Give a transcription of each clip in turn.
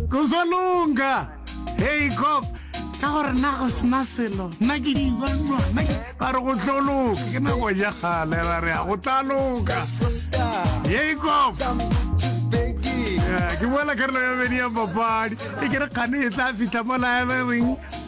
kuzolunga hey cop ka gore na go sena selo nna ke dibanwa ba re go tlo loka ke nako ja gale ba re go tla loka hey cop ke boela karolo ya bedi ya papadi e ke re kgane e tla fitlha mo laebereng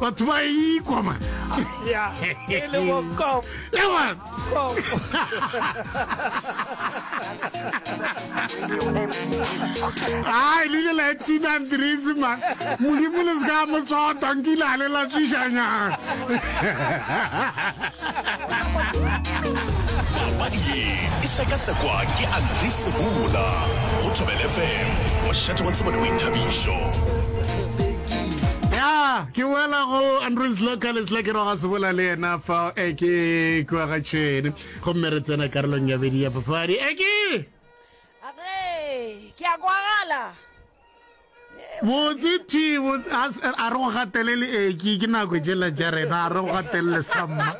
batho ba ikwa ma ya e le go kom ya ma kom ai le la tina andrisi ma modimo le se ka mo tsota nkile a le la tsishanya papadi ye e sekasekwa ke andrisi bula go thobele fm mošate wa tsebo le boithabišo ya ke boela go andrins local sla ke roga se bola le yena fa e ke kua ga tšhene gomme re tsena karolong ya bedi ya papadi e ke ke a kwagala botse ti a re go gatelele eki ke nako jela ja rena a re go gatelele samma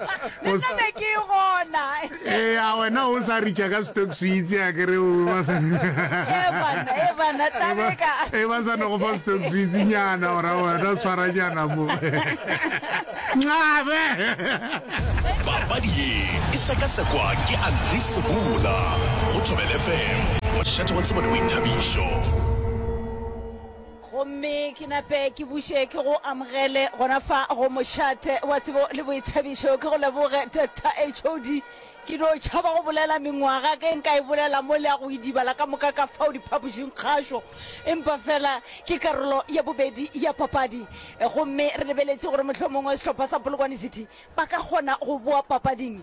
Eya wena o sa ritša ka stock suitse a kere o ba sa e ba sa no go fa stock suitse nyana ora wena o tshwara nyana mo ncabe papadi ye e sekasekwa ke Andre Sebula go Thobela FM mošate wa tsebo le boithabišo Gomme ke nape ke buše ke go amogele gona fa go mošate wa tsebo le boithabišo. Ke go leboge, Doctor HOD. Ke no tšhaba go bolela mengwaga ge nka e bolela mo le ya go idibala ka moka ka fao diphapošing kgašo, empa fela ke karolo ya bobedi ya papadi. Gomme re lebeletše gore mohlomongwe sehlopha sa Polokwane City ba ka kgona go boa papading.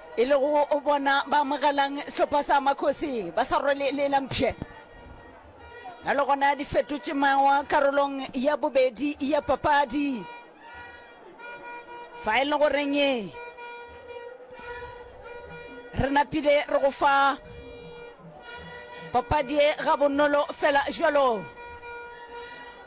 e lego o bona ba amogelang sehlopha sa makgosi ba sa rwele le la mpšhe ya le gona di fetotše mawa karolong ya bobedi ya papadi fa e le goreng re napile re go fa papadi e ga bonolo fela jalo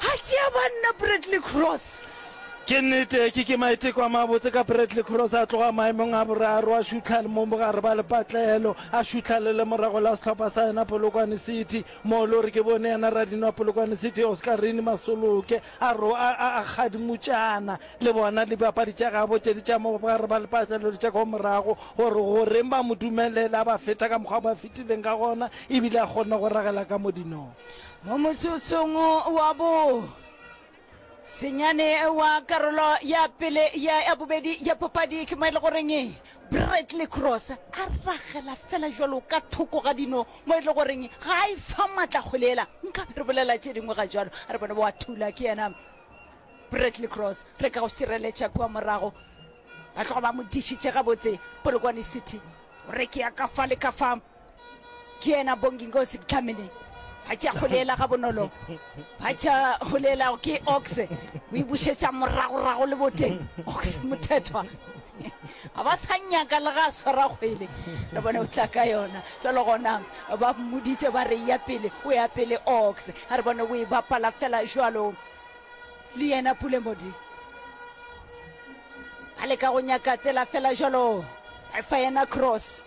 A tšea banna Bradley Cross. Ke nnete, ke ke maiteko a mabotse ka Bradley Cross a tloga maemong a boraro a šutlha le mo bogare ba lepatlelo, a šutlha le lemorago la sehlopha sa yena Polokwane City, moo le gore ke bone yena radino wa Polokwane City Oscarine Masoloke a ro a a a kgadimutšana le bona dibapadi tša gabo tše di tša mo bogare ba lepatlelo le tša kwa morago gore goreng ba mo dumelele a ba feta ka mokgwa o ba fetileng ka gona ebile a kgona go ragela ka modinong. Mo motsotsong wa bo senyane wa karolo ya pele ya ya bobedi ya papadi ke mo e le goreng bradley cross a ragela fela jalo ka thoko ga dino mo e le goreng ga a e fa maatla kgolela nka re bolela tše dingwe ga jalo a re bone wa thula ke yena bradley cross re ka go šireletša kua morago ba tloga ba mo dišitše gabotse polokwane city o re ke ya ka fa le ka fa ke ena bongi nkosi ke tlhamele ba tša go leela ga bonolo ba tša go leelago ke ox o e bušetša moragorago le boteng ox mothethwa a ba sa nyaka le ga a swara kgwele re bone o tla ka yona jalo gona ba mmoditše ba re ya pele o ya pele ox a re bone o e bapala fela jalo le yena pulemodi a leka go nyaka tsela fela jalo efa yena cross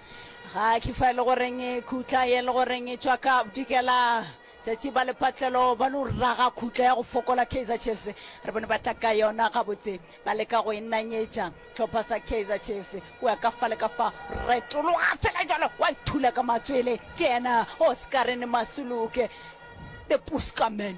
ga ke fa e le goreng e khutla ye le goreng e tšwa ka bodikela tšatši ba lepatlelo ba lo raga khutla ya go fokola kaizer chiefs re bone ba tla ka yona gabotse ba leka go e nanyetša tlhopha sa kaizer chiefs o ya ka fa le ka fa retologa fela jalo wa ithula ka matswele ke ena oscarene masuluke the puskaman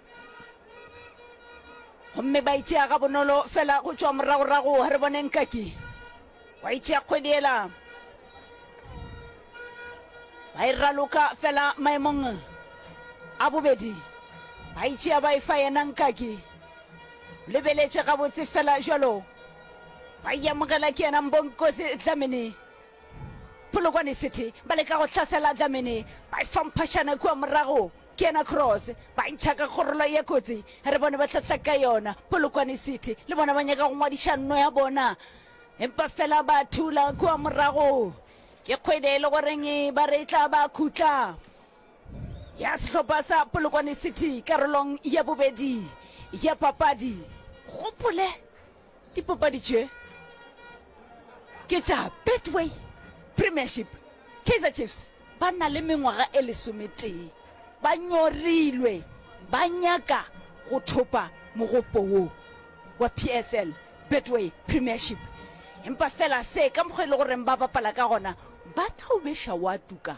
gomme ba itšea ga bonolo fela go tšwa moragorago re bone nkaki wa itšea kgwedi ela ba e raloka fela maemong a bobedi ba itšea ba e fa yena nkaki lebeletše gabotse fela jalo ba iamogela ke yena mbonkosi dlamini polokwane city ba leka go hlasela dlamini ba e famphašana kua morago Ke yena Cross, ba ntšha ka kgorolo ye kotsi, re bone ba hlahla ka yona. Polokwane City le bona ba nyaka go ngwadiša nno ya bona, empa fela ba thula kua morago. Ke kgwele e le goreng ba re e tla ba khutla ya sehlopha sa Polokwane City karolong ya bobedi ya papadi. Gopole. Dipapadi tše ke tša Betway Premiership. Kaizer Chiefs ba na le mengwaga e lesometee ba nyorilwe ba nyaka go thopa mogopo wo wa PSL Betway Premiership empa fela se ka mokgwa e le goreng ba bapala ka gona ba thaubesha wa tuka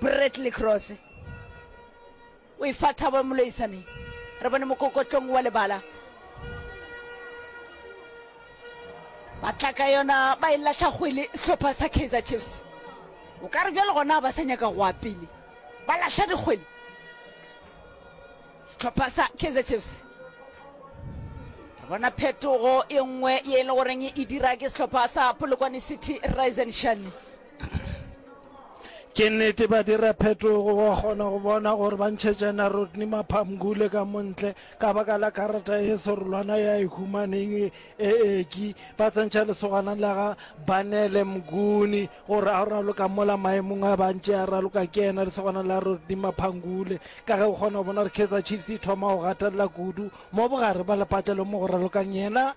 bradley cross o e fa thabo moloisaneng re bone mokokotlong wa lebala ba tla ka yona ba e latlha kgwele sehlopha sa kaizer chiefs o ka re bjale gona ba sa nyaka goa pele ba latlha dikgwele sehlopha sa kaizer chiefs re bona phetogo e nngwe ye e le goreng e dira ke sehlopha sa polokwane city risen shane ke nnete ba dira phetogo wa kgona go bona gore ba ntšhetšana rodney maphamgule ka montle ka baka la karata e serolwana ya e humaneng e eki ba tsentšha lesogana la ga banele mguni gore a raloka mola maemong a bantše a raloka ke ena lesogana la rodney maphangule ka ge o kgona go bona gore kaizer chiefs e thoma go gatelela kudu mo bogare ba lepatlelo mo go ralokang yena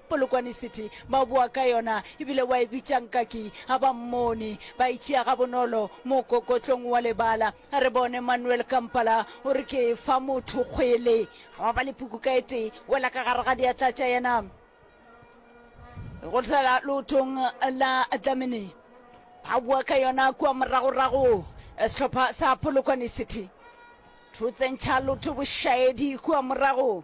Polokwane City, ba boa ka yona ebile wa e bitša Nkaki. Ga ba mmone, ba e tšea gabonolo mokokotlong wa lebala. A re bone Manuel Kampala o re ke e fa motho kgwele. Gwa ba le puku ka e tee, wela ka gare ga diatla tša yena go tla leotong la Dlamini. Ba boa ka yona kua moragorago sehlopha sa Polokwane City. Thutse ntšha loto bošaedi kua morago.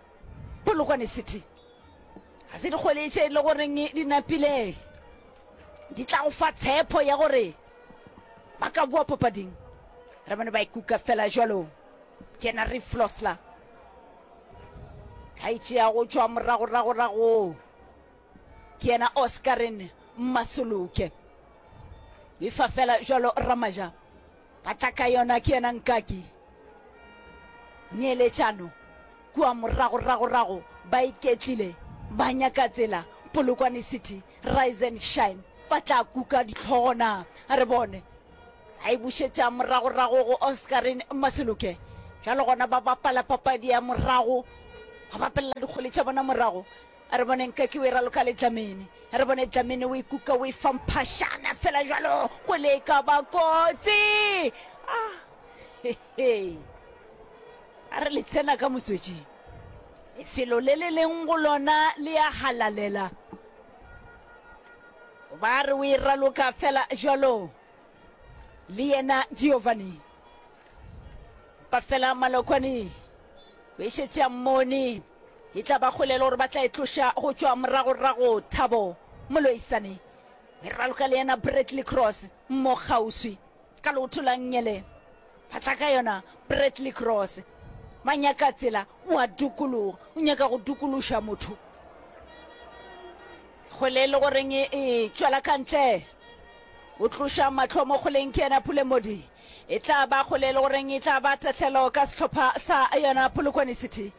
Polokwane City ga se dikgwele tše e le goreng di napile di tla go fa tshepo ya gore ba ka boa papading re bone ba ikuka fela jalo kena re flosla ka itšea go tšwa moragoragorago ke yena oscarin mmasoloke e fa fela jalo ramaja Patlaka yona ke yena Nkaki. Neeletšano kua moragoragorago ba iketlile ba nyaka tsela Polokwane City Rise and Shine ba tla kuka dihlogo na? A re bone. A e bušetša moragorago go Oscarine Maseloke. Bjalo gona ba bapala papadi ya morago, ba bapelela dikgole tša bona morago. A re boneng ka ke o e raloka le Dlamini. A re bone Dlamini o e kuka o e fa mphašana fela jalo go le e ka ba kotsi. Ah, he he. A re le tsena ka motswetšing. Lefelo le le leng go lona le a halalela. Ba re o e raloka fela jalo le yena Giovanni. Ba fela malokwane o e šetše a mmone. E tla ba kgolelo gore ba tla e tloša go tšwa moragorago. Thabo Moloisane, e raloka le yena Bradley Cross mo kgauswi ka leoto la Nngele. Ba tla ka yona Bradley Cross. Ba nyaka tsela, o a dukologa, o nyaka go dukološa motho. Kgole e le goreng e e tšwela ka ntle. O tloša matlho mo kgoleng ke yena Pule Modi. E tla ba kgole e le goreng e tla ba tatlhelo ka sehlopha sa yona Polokwane City.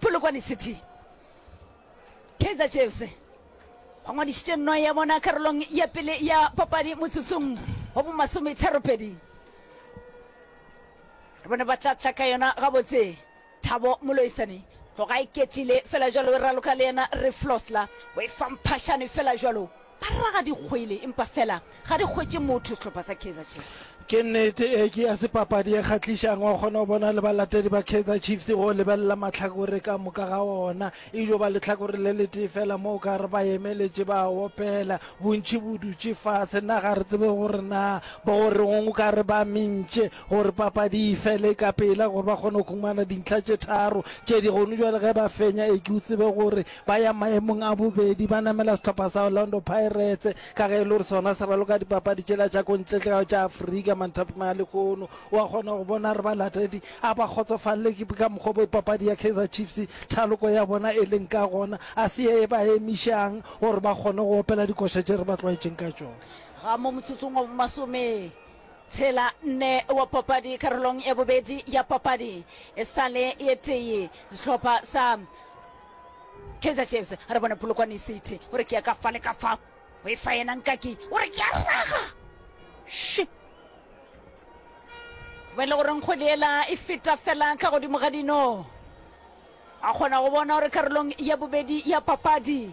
Polokwane City. Kaizer Chiefs ba ngwadišitše nnoe ya bona karolong ya pele ya papadi motsotsong wa bomasometharopedi. Re bone ba tla tla ka yona gabotse. Thabo Moloisane tloga e ketlile fela jalo e raloka le yena Reflosla o e fa mphashane fela jalo. Ba re ga di hwele empa fela ga di hwetše motho sehlopha sa Kaizer Chiefs. Ke nnete, ee ke ya se papadi e kgahlišang, wa kgona go bona le balatedi ba Kaizer Chiefs go lebelela mahlakore ka moka ga ona, e dio ba lehlakore le letee fela mo o ka re ba emeletše ba a opela, bontši bo dutše fase, na ga re tsebe gore na ba go reng, o ka re ba mintše gore papadi e fele ka pela gore ba kgone go humana dintlha tše tharo tše di gonu bjale ge ba fenya, ee ke o tsebe gore ba ya maemong a bobedi ba namela sehlopha sa orlando pirates ka ge e le gore sona se raloka dipapadi tšela tša kontletlego tša aforika manthapi malekgono wa kgona go bona re balatedi a ba kgotsofalele ke ka mokgwa bo papadi ya kaizer chiefs thaloko ya bona e leng ka gona a se ye e ba emišang gore ba kgone go opela dikoša tše re ba tlwaetšeng ka tšona ga mo motsotsong wa masome tshela nne wa papadi karolong ya bobedi ya papadi e sale e tee sehlopha sa Kaizer Chiefs a re bona Polokwane City o re ke ya ka fa le ka fa o e fa yena Nkaki o re ke ya raga shi ba e le gore nkgo le ela e feta fela ka godimo ga dino a kgona go bona gore karolong ya bobedi ya papadi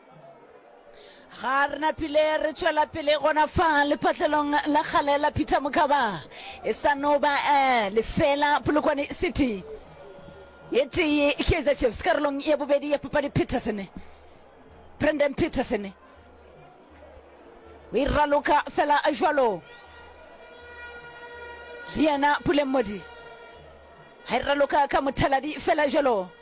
ga re na phile re tšwela pele gona fa lephatlelong la kgale la peter mokaba e sa no ba eh, lefela polokwane city e tee kaizer chiefs karolong ya bobedi ya papadi peterson brandon peterson o e raloka fela jalo le yena puleng modi ga e raloka ka mothaladi fela jalo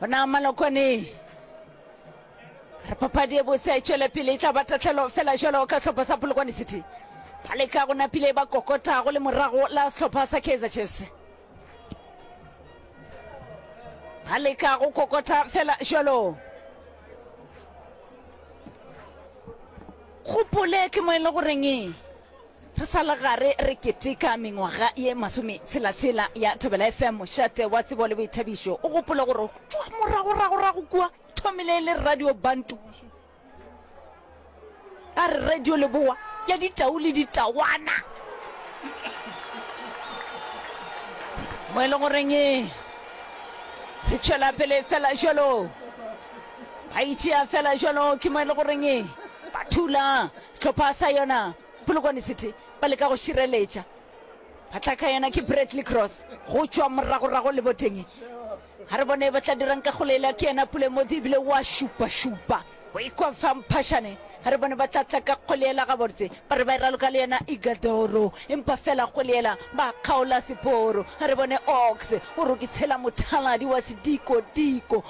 bona malokwane re papadi e botse e tšwele pele e tla ba tatlhelo fela jalo ka sehlopha sa polokwane city ba leka go napile ba kokota go le morago la sehlopha sa kaizer chiefs ba leka go kokota fela jalo gopole ke mo e le goreng Re sa le gare re keteka mengwaga ye masometshela-tshela ya Thobela FM, mošate wa tsebo le boithabišo. O gopole gore go tšwa moragoragorago kua e thomile e le Radio Bantu, a re radio lebowa ya ditau le ditawana, mo e le goreng re tšwela pele fela jalo. Ba e tšea fela jalo, ke mo e le goreng ba thula sehlopha sa yona Polokwane City, ba leka go šireletša. Ba tla ka yona ke Bradley Cross go tšwa moragorago le boteng. Ga re bone ba tla dirang ka golela, ke yena Pule Modi ebile wa šupašupa go ikwa fa mphašane. Ga re bone ba tla tla ka golela gabotse, ba re ba e raloka le yena Igadoro, empa fela golela ba kgaola seporo. Ga re bone Ox o rokitshela mothaladi wa sedikotiko.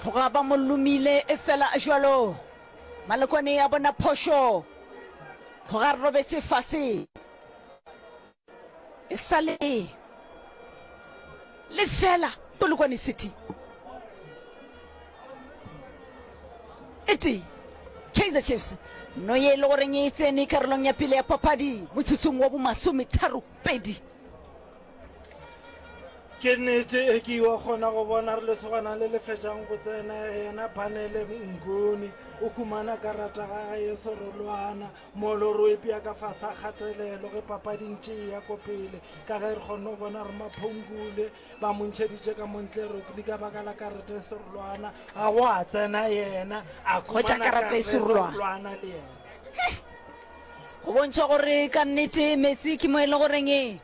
Tloga ba mo lomile efela jalo Malokwane ya bona phošo tloga re robetse fase e sa le le fela Polokwane City e tee Kaizer Chiefs no ye e le goreng e tsene karolong ya pele ya papadi motsotsong wa bomasometharo pedi ke nnete e ke yo kgona go bona re lesogana le le fetšang go tsena yena panele ngoni o humana karata ga ga ye sorolwana molo ro epea ka fasa kgatelelo ge papading tše ya ko pele ka ge re kgonne go bona re maphongule ba montšheditše ka montle rokli ka baka la karata e sorolwana ga go a tsena yena a khumana karata e sorolwana le yena go bontšha gore ka nnete metsi ke mo e le goreng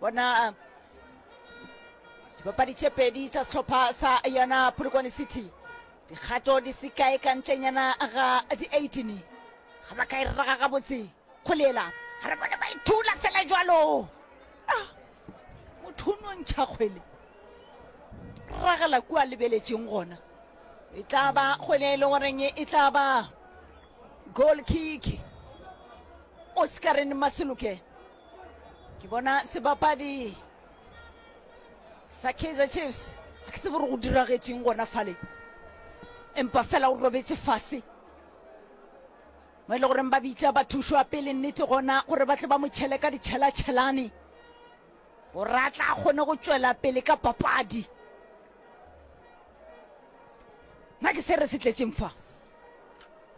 bona dipapadi tše pedi tša sehlopha sa yona polokwane city dikgato di se kae ka ntlenyana ga di-18 ga ba ka e rraga gabotse kgolela ga re bone ba ithula fela jalo ah, motho o nontšha kgwele ragela kua lebeletseng gona e tla ba kgwele e le goreng e tla ba goal kick oscarine maseloke ke bona sebapadi sa kaizer chiefs a ke tsebo gore go diragetseng gona fale empa fela o robetse fase mo e le goreng ba bitsa bathušwa pele nnete gona gore ba tle ba mo tšhele ka ditšhelatšhelane gore a tla kgone go tšwela pele ka papadi nna ke se re se tletseng fa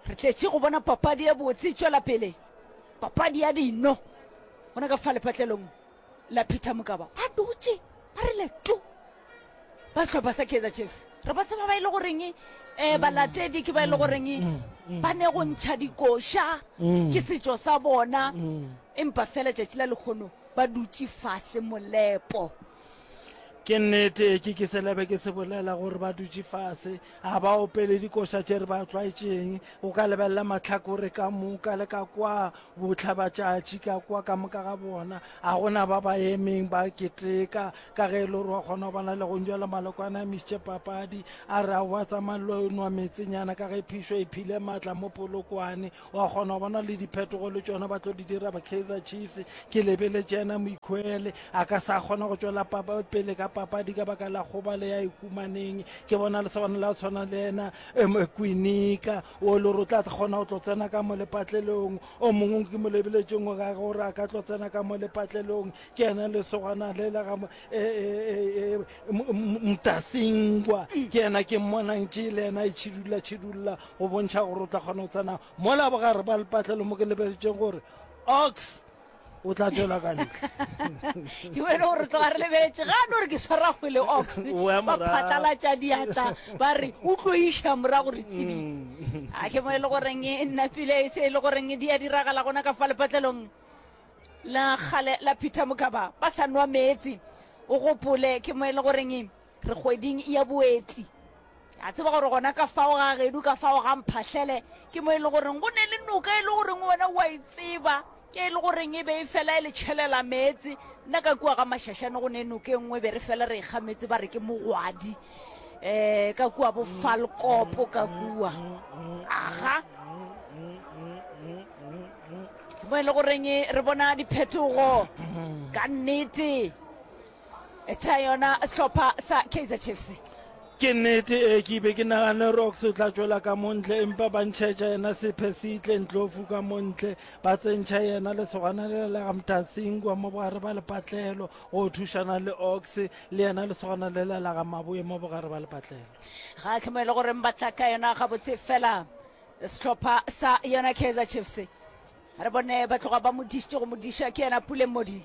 re tletše go bona papadi ya botse tšwela pele papadi ya dino gona ka fa lepatlelong la peter mokaba ba dutše ba re leto ba sehlopha sa kaizer chiefs re ba tseba ba e le goreng um balatedi ke ba e le goreng mm, mm, ba ne go mm. ntšha dikoša ke setšo sa bona empa fela tšatši la lekgono ba dutše fase molepo ke nnete ke ke selebe ke se bolela gore ba dutše fase a ba opele dikoša tše re ba tlwaetšeng o ka lebelela matlhakore ka moka le ka kwa botlhabatšatši ka kwa ka moka ga bona a gona ba ba emeng ba keteka ka ge e le gore wa kgona go bona le go njwela malokwana a misitše papadi a re a wa tsamaya lo nwa metsenyana ka ge phišo e phile maatla mo polokwane wa kgona go bona le diphetogo le tšona ba tlo di dira ba kaizer chiefs ke lebeletše ena moikhwele a ka sa kgona go tšwela pele ka papadi ka baka la goba le ya ikumaneng ke bona le sona la tshwana le ena kwinika o le gore o tla kgona go tlo tsena ka mo lepatlelong o mongwe ke mo lebeletšeng o ka gore a ka tlo tsena ka mo lepatlelong ke ena le sogana le la ga e, e, e, mtasingwa ke ena ke mmonang tše le ena e tšhidula tšhidula go bontšha gore o tla kgona go tsena mola bogare ba lepatlelo mo ke lebeletšeng gore ox o tla tšwela ka ntle ke wena gore tloga re lebeletše ga no re ke swara kgwele ox ba phatlalatša diatla ba re o tlo iša morago re tsebile mm. a ke mo e le goreng e nnapile e le goreng di ya diragala gona ka fa lepatlelong la gale la peter mokaba ba sa nwa meetse o gopole ke mo e le goreng re kgweding ya boeti a tseba gore gona ka fao ga gedu ka fao ga mphahlele ke mo e le goreng go ne le noka e le goreng wena wa e tseba ke e le goreng e be e fela e le tšhelela meetse nna ka kua ga mašašane go ne noka e nngwe be re fela re ikga meetse ba re ke mogwadi um ka kua bo falkopo ka kua aga mo e le goreng re bona diphetogo ka nnete e tsa yona sehlopha sa kaizer chiefs ke nnete e ke be ke nagane rocks o tla tšwela ka montle empa ba ntšhetša yena sephe se itlentlofu ka montle ba tsentšha yena le segwanalelega mtatsingwa mo bogare ba lepatlelo go thušana le ox le yena le segwanalelelaga maboe mo bogare ba lepatlelo ga ke mo e le gore ba tla ka yona gabotse fela sehlopha sa yona kaizer chiefs re bone ba tloga ba modišitše go modiša ke yena puleng modi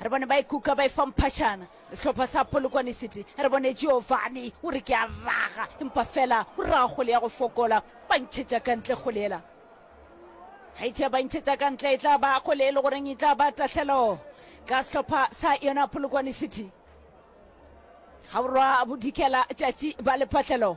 Re bone ba ikuka ba efa mphašana sehlopha sa Polokwane City. Re bone Giovanni o re ke a raga, empa fela o raga kgole ya go fokola, ba ntšhetša ka ntle kgole ela. Ge tšea ba ntšhetša ka ntle e tla ba kgole e le goreng e tla ba tahlelo ka sehlopha sa yona Polokwane City. Gaborwa Bodikela tšatši ba lephahlelo.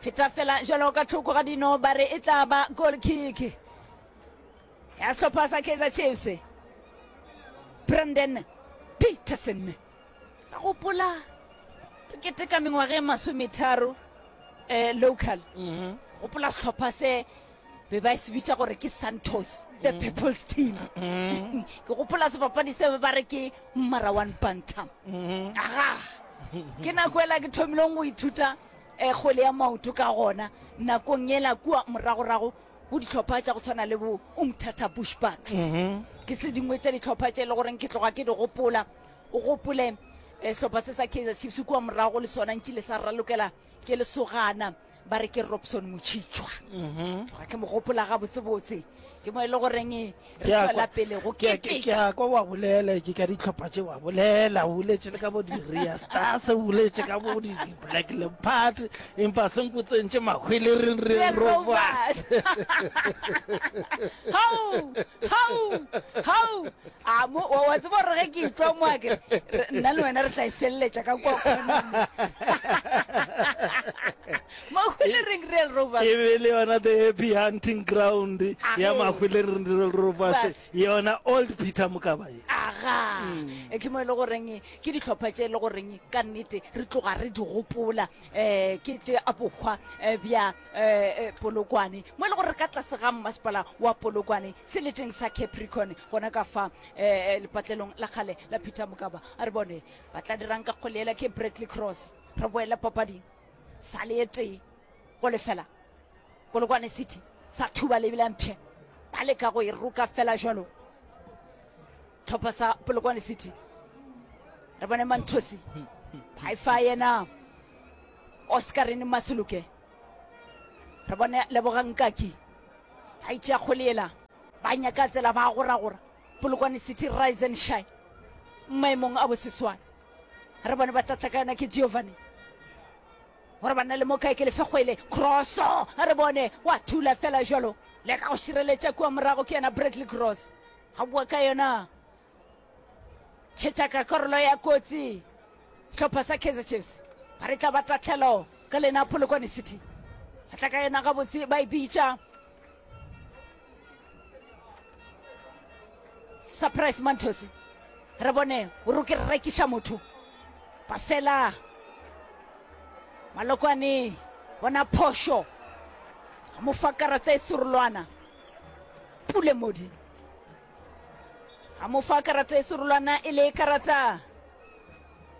Feta fela jalo ka thoko ga dino ba re e tla ba goal kick ya sehlopha sa Kaizer Chiefs. Brandon Peterson sa gopola re keteka mengwaga e masometharo eh, local mhm. gopola sehlopha se be ba se bitša gore ke santos the mm. people's team mm. ke gopola sebapadi se ba re ke mmara one bantam mm-hmm. aga ke nako ela ke thomileng go ithuta e kgole ya maoto ka gona nakong yela kua moragorago go ditlhopha tša go tshwana le bo umthata bush bucks mhm. ke se dingwe tša ditlhopha tše e le goreng ke tloga ke di gopola o gopole eh, sehlopha se sa kaizer chiefs kua morago le sona ntšile sa ralokela ke lesogana ba re ke robson motšhitšwa mhm. ke mo gopola gabotsebotse ke mo e le goreng Ke a kwa- pele go ke a- ke- ke keteka a kwa wa bolela ke ka ditlhopha tše wa bolela o boletše le ka bo di-rea stars o boletše ka bo di- di-black leopard empa se nko tsentše mahwele re re Re rovas hau hau hau a mo wa wa tseba gore ge ke itlwa mo a kere re- nna le wena re tla e feleletša ka kwa kgoneng Mahwelereng Real Rovers. E be e le yona the happy hunting ground ya Mahwelereng Real Rovers, yona Old Peter Mokaba ye. aga e ke mo e le goreng ke dihlopha tše e le goreng ka nnete re tloga re di gopola um ke tše a bokgwa eh, bja eh, eh, polokwane mo e le gore ka tlase ga mmasepala wa polokwane seleteng sa capricorn gona ka fa um lepatlelong la kgale la peter mokaba a re bone ba tla dirang ka kgoleela ke bradley cross re boela papading Sa le e tee go lefela Polokwane City sa thuba lebile mpshe ba leka go e roka fela jalo tlhopha sa Polokwane City re bone manthosi ba e fa yena oscarine masuluke re bone leboga nkaki ba itšea kgoleela ba nyaka tsela ba goragora polokwane city rise and shine maemong a boseswane re bone ba tlatla ka yona ke giovanni gore ba nna le mo kae ke lefegwele crosso a re bone wa thula fela jalo le ka go šireletša kua morago ke yena bradley cross ga bua ka yona tšhetša ka karolo ya kotsi sehlopha sa kaizer chiefs ba re tla ba tatlhelo ka lena polokwane city ba tla ka yona gabotse ba e bitša surprise mantos re bone o re ke rekiša motho ba fela malokwane bona phošo a mo fa karata e serolwana pule modi a mo fa karata e serolwana e le karata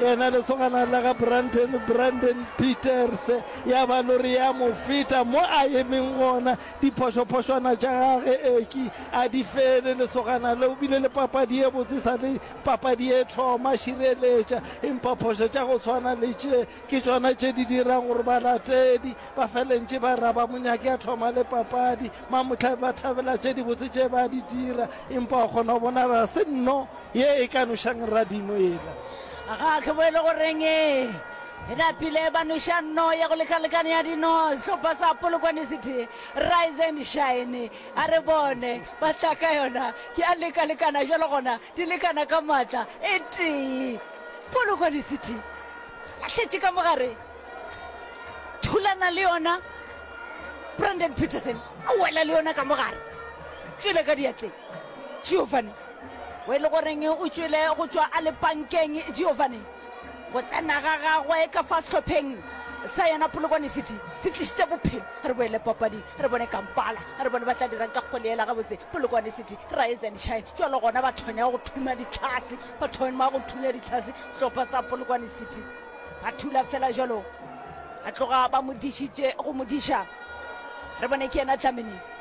Yena lesogana la ga Brandon, Brandon Peters, ya ba lori ya mo feta mo a emeng gona. Diphošophošwana tša gage eki a di fele. Lesogana le o bile le papadi ye botse sa le papadi ye thoma. Šireletša, empa phošo tša go tshwana le tše ke tšona tše di dirang gore balatedi ba felentše ba raba monyaki a thoma le papadi. Mamohlai ba thabela tše dibotse tše ba di dira, empa o kgona go bona ga se nno Ye e ka nošang radino yela. Ga ke boele go reng e e napile ba noša no ya go lekalekana ya dino sehlopha sa Polokwane City Rise and Shine a re bone ba tla ka yona ke a lekalekana jalo gona di lekana ka maatla e tee Polokwane City a tletše ka mogare thulana le yona Brandon Peterson a wela le yona ka mogare tšwele ka diatleng Giovanni o e le goreng o tšwele go tšwa a le pankeng giovanni go tsena ga gagwe ka fa sehlopheng sa yona polokwane city se tlišitše bophelo re boele papadi re bone kampala re bone ba tla dirang ka kgoleela gabotse polokwane city rise and shine jalo gona ba thonya go thuma ditlhase ba thoma go thunya ditlhase sehlopha sa polokwane city ba thula fela jalo a tloga ba mo dišitše go mo diša re bone ke yena tlamene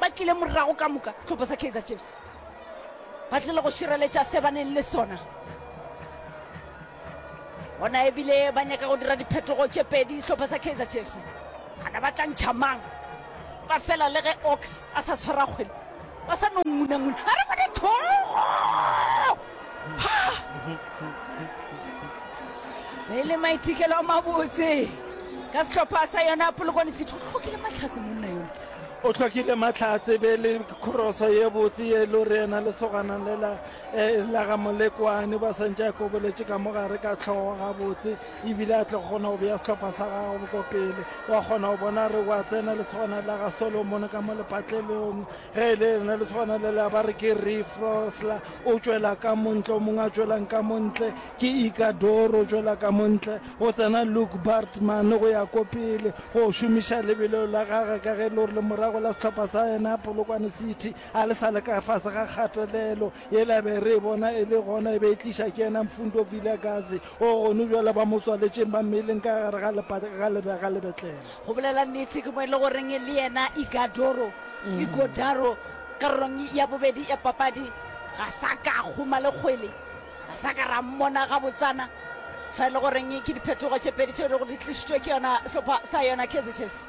ba tlile morago ka moka sehlopha sa kaizer chiefs ba tlile go šireletša se ba neng le sona gona ebile ba nyaka go dira diphetogo tše pedi sehlopha sa kaizer chiefs ana ba tla ntšha mang ba fela le ge ox a sa tshwara kgwele ba sa no ngunanguna a re bone thogo e le maithekelo a mabotse ka sehlopha sa yona polokwane setho tlhokile matlhatse monna yone o tlhokile matlhatse be le khoroso ye botse ye le gore yena lesogana le la eh, la ga molekwane ba santse a koboletše ka mogare ka tlhogo gabotse ebile a tle kgona go beya setlhopha sa gago ko pele wa kgona go bona re wa tsena lesogana la ga solomon ka mo lepatlelong ge e le lena lesogana le la ba re ke refrosla o tšwela ka montle o mongwe a tšwelang ka montle ke ikadoro o tšwela ka montle go tsena Luke Bartman go ya ko pele go šomiša lebelo la gage ka ge lori le morago la sehlopha sa yena Polokwane City a le sa le ka fase ga kgatelelo e la be re bona e le gona e be e tliša ke yena Mfundo Vilagazi o gone jwale ba mo tswaletšeng ba mmeleng ka gare ga lepate ga lebe ga lebetlele go bolela nnete ke mo e le goreng le yena Igadoro mm. Igodaro karolong ya bobedi ya papadi ga sa ka kgoma le kgwele Ga sa ka ra mmona gabotsana fa e le goreng ke diphetogo tše pedi tšeo e lego di tlišitšwe ke yona sehlopha sa yona kaizer chiefs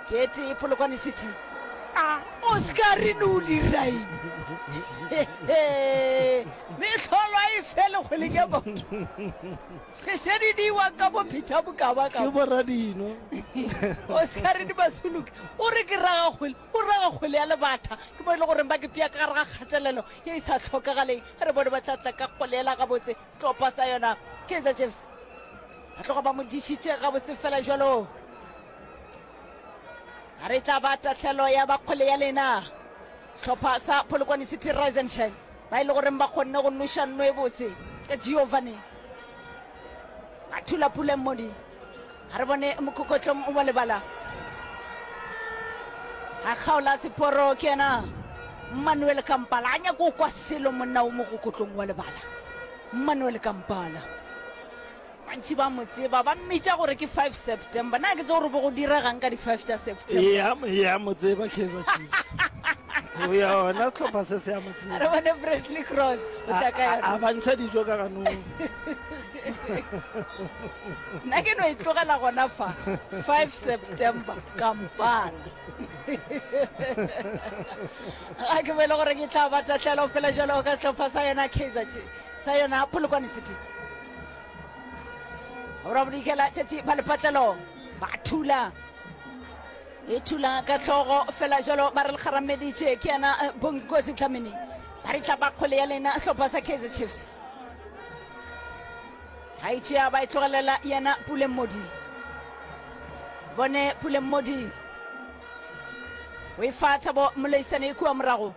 ke tee polokwane city a o seka re ne o diraeng mehlolo a e fele kgwele ke batho re se di diwa ka bopheta bokaba ka boradino o seka re di basoloke o re ke raga kgwele O raga kgwele ya lebatha. Ke mo e le goreng ba kepea ka gare ga kgatelelo ye e sa hlokagaleng. Ge re bone ba tla tla ka kgwele yela gabotse, setlopha sa yona Kaizer Chiefs ba tloga ba mo dišitše gabotse fela jalo. A re tla ba tatlhelo ya ba kgwele ya lena. Setlopha sa Polokwane City Rise and Shine ba e le goreng ba kgonne go noša nno e botse ka Giovanni a thula puleng modi a re bone mokhokotlong wa lebala a kgaola seporo ke yena manuel kampala a nyako kwa selo monna o mogokotlong wa lebala manuel kampala bantšhi ba mo tseba ba mmitša gore ke 5 september na ke tse gore bo go diregang ka di-5 tša september ya mo tseba kaizer chiefs ya ona setlhopha se se ya mo tseba re bone bradley cross o tla ka yona a bantšha dijo ka ganong nna ke no e tlogela gona fa 5 september kampala ga ke boele gore ke tla batatlhelo fela jalo ka setlhopha sa yona kaizer chiefs sa yona polokwane city gora bodikela tšatši ba lepatlelo ba thula e thula ka tlhogo fela jalo ba re le kgarameditše ke yena eh, bonkosi tlamene ba re tla ba kgole ya lena setlhopha sa kaizer chiefs a e tšea ba e tlogelela yena pulemmodi bone pulemmodi o e fa thabo moleisane e kua morago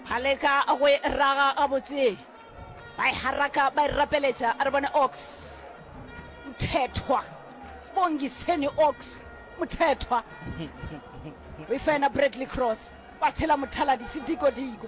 ba leka go e raga gabotse ba e haraka ba e rapeletša a re bone ox mthethwa sibongiseni ox mthethwa o e fa yena bradley cross ba tshela mothaladi sedikodiko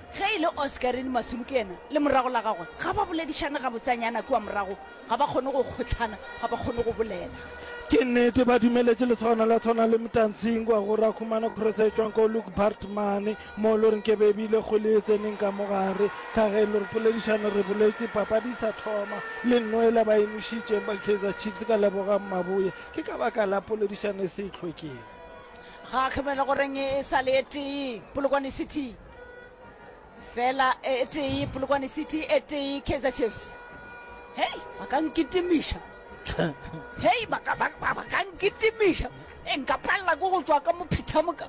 Ge e le Oscarine Masulu ke yena le morago la gagwe, ga ba boledišane gabotsanyana kua morago, ga ba kgone go kgohlana, ga ba kgone go bolela. Ke nnete ba dumeletše lesogana la tshwana le Mtansingwa gore a khumana cross e tšwang ko Luke Bartman mo lo reng ke be bile kgole e tseneng ka mo gare ka ge lo re poledišane re boletše papadi sa thoma le nnoela ba enošitšeng ba Kaizer Chiefs ka lebogang maboya ke ka baka la poledišane se e tlhokeng ga khumela goreng e sa le e tee polokwane city fela e tee polokwane city e tee kaizer chiefs hei ba ka nkitimiša hei ba ka- ba- ba- ba ka nkitimiša e nka palela ko go tswa ka mophithamoka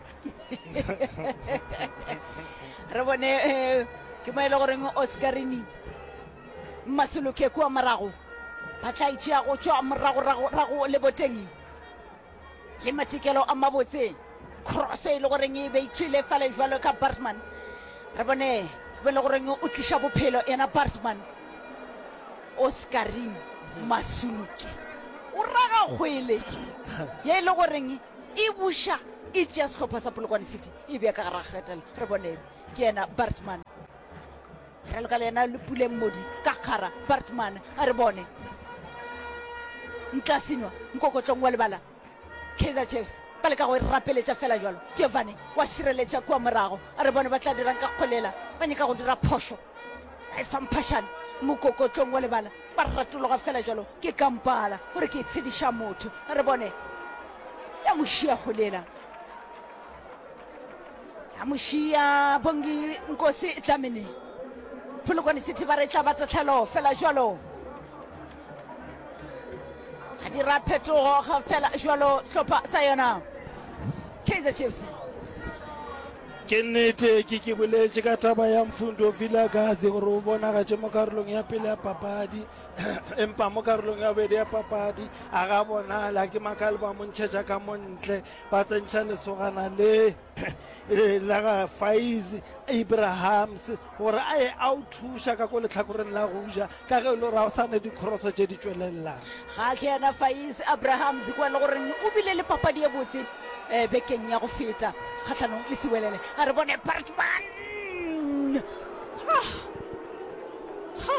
re bone eh, ke mo e le goreng oscarini mmasoloke kua morago ba tla itšea go tswa moragoragorago le boteng le matikelo a mabotse cross e le goreng e be itšwile fale jwalo ka bartman re bone be le goreng o tliša bophelo ena bartman oscarin masuluke o raga kgwele ye e le goreng e buša e tšea sehlopha sa polokwane city e bea ka gara kgetela re bone ke yena bartman Re loka le yena le puleng modi ka kgara. Bartman a re bone ntla sinwa nkokotlong wa lebala. Kaizer Chiefs ba leka go e rapeletša fela jalo. Giovanni wa šireletša kua morago a re bone ba tla dirang ka kgolela. Ba nyaka go dira phošo. Ba e fa mphašane mokokotlong wa lebala. Ba ratologa fela jalo ke kampala o re ke e tshediša motho. A re bone ya mo šia kgolela. amushia bongi nkosi tlamene pholokwane city ba re tla ba tatlhelo fela jalo a dira phetogo ga fela jalo hlopha sa yona kaizer chiefs ke nnete ke ke boletše ka taba ya mfundo vilagazi gore o bonagatše mo karolong ya pele ya papadi empa mo karolong ya bobedi ya papadi a ga bonala ke makale ba montšhetša ka montle ba tsentšha lesogana le la ga faiz abrahams gore a ye a o thuša ka ko letlhakoreng la go ja ka ge e le gore ga o sa ne dikgorotsho tše di tšwelelelang ga ke yena faiz abrahams kwa e le goreng o bile le papadi ye botse um bekeng ya go feta kgatlhanong le sewelele a re bone partman ha ha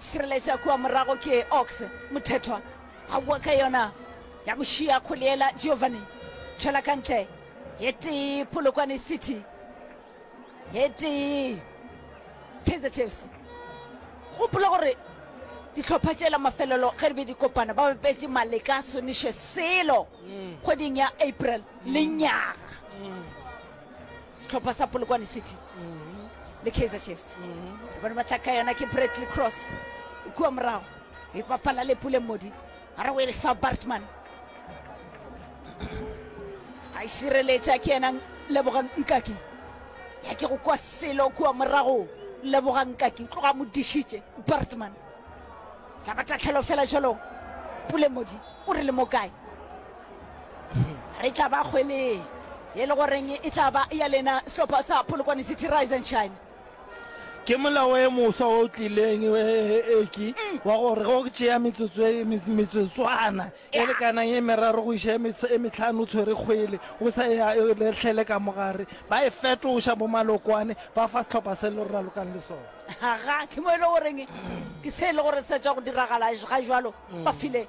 Šireletša kua morago ke Ox Mothethwa. A boa ka yona ya go šia kgole yela Giovanni. Tšwela ka ntle. Ye tee Polokwane City. Ye tee Kaizer Chiefs. Gopola gore dihlopha tšela mafelelo ge di be di kopana ba bapetše Maleka Soniše selo kgweding ya April lenyaga. sehlopha sa polokwane city le kaizer chiefs bone ba tlaka yona ke bradley cross e kua morago e bapala le pule modi a re o e lefa bartman a e šireletša ke yena lebogang nkaki ya ke go kwa selo kua morago lebogang nkaki tloga mo dišitše bartman tla ba tatlhelo fela jalo pule modi o re le mo kae re tla ba kgwele e le goreng e tla ba ya lena sehlopha sa polokwane city rise and shine ke molao e moswa o tlileng e- e- e- eki mm. wa gore go tšea metsotso e- me- metsotswana e Yeah. lekanang e meraro go iša e mets- e metlhano o tshwere kgwele o sa ya e letlhele ka mogare ba e fetoša bo malokwane ba fa setlhopha se le ralokang le sone aga ke mo e le goreng ke se e le gore se tswa go diragala ga jalo ba file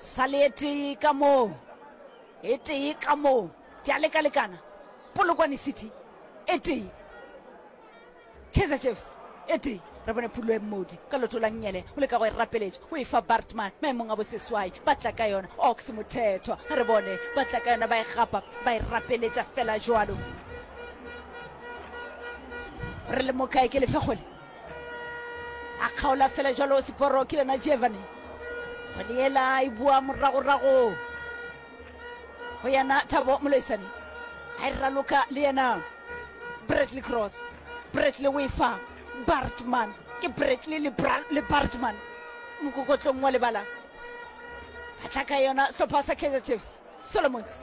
Sa le e tee ka moo. E tee ka moo. Di a leka-lekana. Polokwane City e tee. Kaizer Chiefs e tee. Re bone phulo e mmodi ka loto la nnyele o leka go e rapeletša o e fa bartman maemong a boseswai ba tla ka yona ox mothethwa ga re bone ba tla ka yona ba e gapa ba e rapeletša fela jalo re le mokae ke lefegole a kgaola fela jalo seporo ke yona jevane kgwele yela e bua moragorago go yena thabo moloisane a e raloka le yena bradley cross bradley o e fa bartman ke bradley le, Bra- le bartman mokokotlong wa lebala a tla ka yona sehlopha sa kaizer chiefs solomons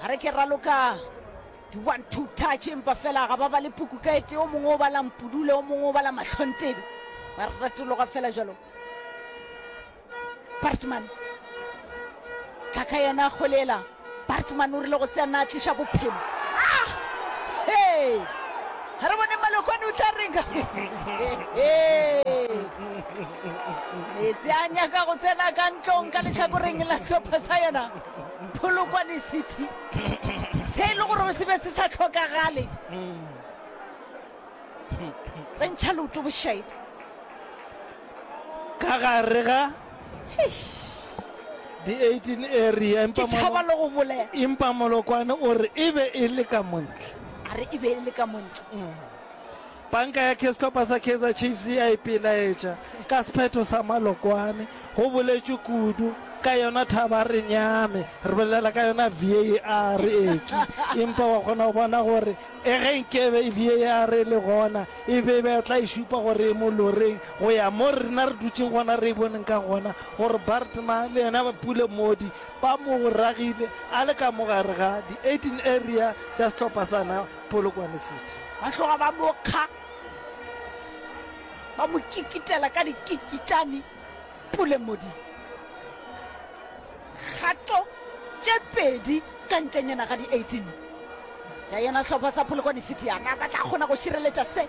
Ba re ke raloka di one two touch empa fela ga ba ba le puku ka ete o mongwe o bala mpudule o mongwe o bala mahlontebe ba re ratologa fela jalo bartman tlhaka yena golela bartman o rile go tsena a tliša bophelo ah! hey! ga re bone malokwane o tla renga metsi a nyaka go tsena ka ntlong ka letlhakoreng la tlhopha sa yona Polokwane City, se e le gore se be se sa hlokagale. Tsentšha leoto bošaedi. Ka gare ga di 18 area empa tšhaba le go bolela empa molokwane o re e be e le ka montle a re e be e le ka montle mm. Panka ya Kestopa sa Kaizer Chiefs e a ipelaetša ka sephetho sa Malokwane. Go boletšwe kudu ka yona thaba re nyame re bolela ka yona var eki empa wa kgona go bona gore e ge nkebe e var e le gona e be e betla e šupa gore e mo loreng go ya mo rena re dutseng gona re e boneng ka gona gore bartma le yena ba pule modi ba mo ragile a le ka mogare ga di-18 area tša setlhopha sana Polokwane City. Ba tloga ba mo kga, ba mo kikitela ka dikikitane Pule Modi. Kgato tše pedi ka ntlenyana ga di 18 tša yona hlopha sa Polokwane City. A na ba tla kgona go šireletša se?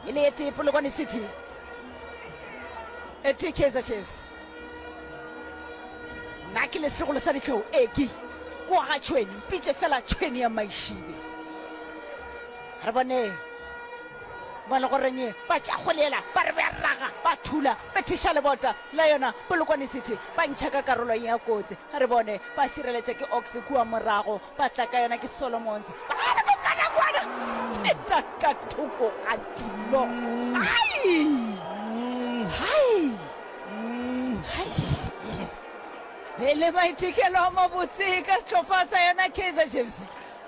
E le e tee Polokwane City, e tee Kaizer Chiefs. Nna ke lesegolo sa ditlhou eki kwa ga tšhweni mpitše fela tšhweni ya maišibe re bone mo le goreng ba tša golela ba re ba raga ba thula ba thiša lebota la yona polokwane city ba ntšha ka karolong ya kotsi re bone ba šireletša ke ox kua morago Ba tla ka yona ke Solomons. Baale mokana kwana! Feta ka thoko ga dilo! Hai! Hai! Hai! E le maitekelo a mabotse ka setlhofa sa yona Kaizer Chiefs.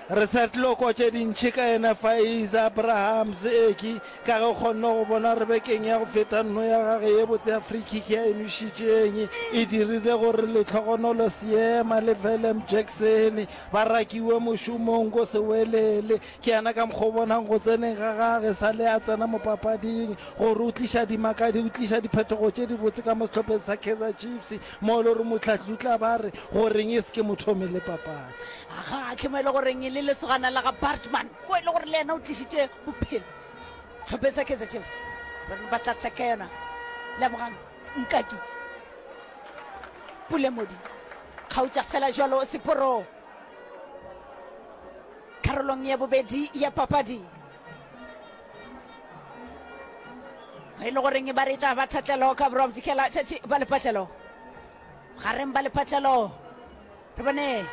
Re sa tlo kwa tše dintši ka yena Faiza Abrahams, Eki Ka ge o kgonne go bona gore bekeng ya go feta nno ya gage ye botse ya free kick ya emišitšeng e dirile gore Letlhogonolo Seema le Willem Jackson ba rakiwe mošomong ko Sewelele. Ke yena ka mokgwa o bonang go tseneng ga gage sa le a tsena mo papading gore o tliša dimakadi, o tliša diphetogo tše dibotse ka mo sehlopheng sa Kaizer Chiefs mo e le gore mohlahli o tla ba re goreng e se ke mothomi le papadi. Ga ke mo e le goreng e le lesogana la ga Bartman ko e le gore le yena o tlišitše Bophelo. Hlopeng sa Kaizer Chiefs. Rona ba tla tla ka yona. Lebogang Nkaki. Pule Modi. Kgautša fela jwalo seporo. Karolong ya bobedi ya papadi. E le goreng ba re tla ba thatlelo ka borwa bodikela tšatši ba lepatlelo. Gareng ba lepatlelo. re bone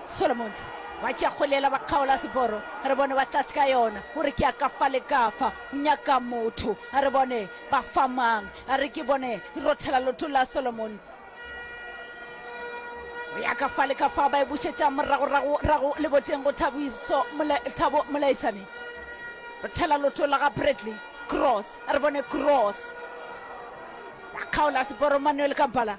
solomons ba tšea kgolela ba kgaola seboro re bone ba tlatse ka yona o re ke ya ka fa le ka fa o nyaka motho a re bone ba famang a re ke bone e rothela loto la solomon o ya ka fa le ka fa ba e bušetša moragoragorago le boteng go thabiso Mole- thabo molaisane rothela loto la ga bradley cross a re bone cross ba kgaola seboro manuel kampala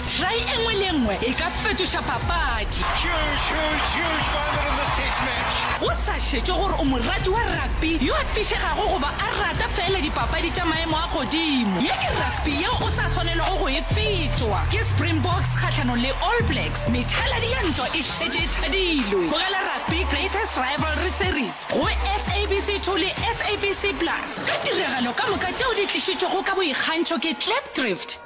Try e nngwe le e nngwe e ka fetoša papadi. Huge, huge, huge moment in this Test match. Go sa šetšwe gore o morati wa rugby yo a fišegago goba a rata feela dipapadi tša maemo a godimo, ye ke rugby yeo o sa swanelego go e fetšwa. Ke Springboks kgahlanong le All Blacks, methaladi ya ntwa e šetše e thadilwe. Tlogela rugby Greatest Rivalry Series go SABC 2 le SABC Plus ka tiragalo ka moka tšeo di tlišitšwego ka boikgantšho ke Klipdrift.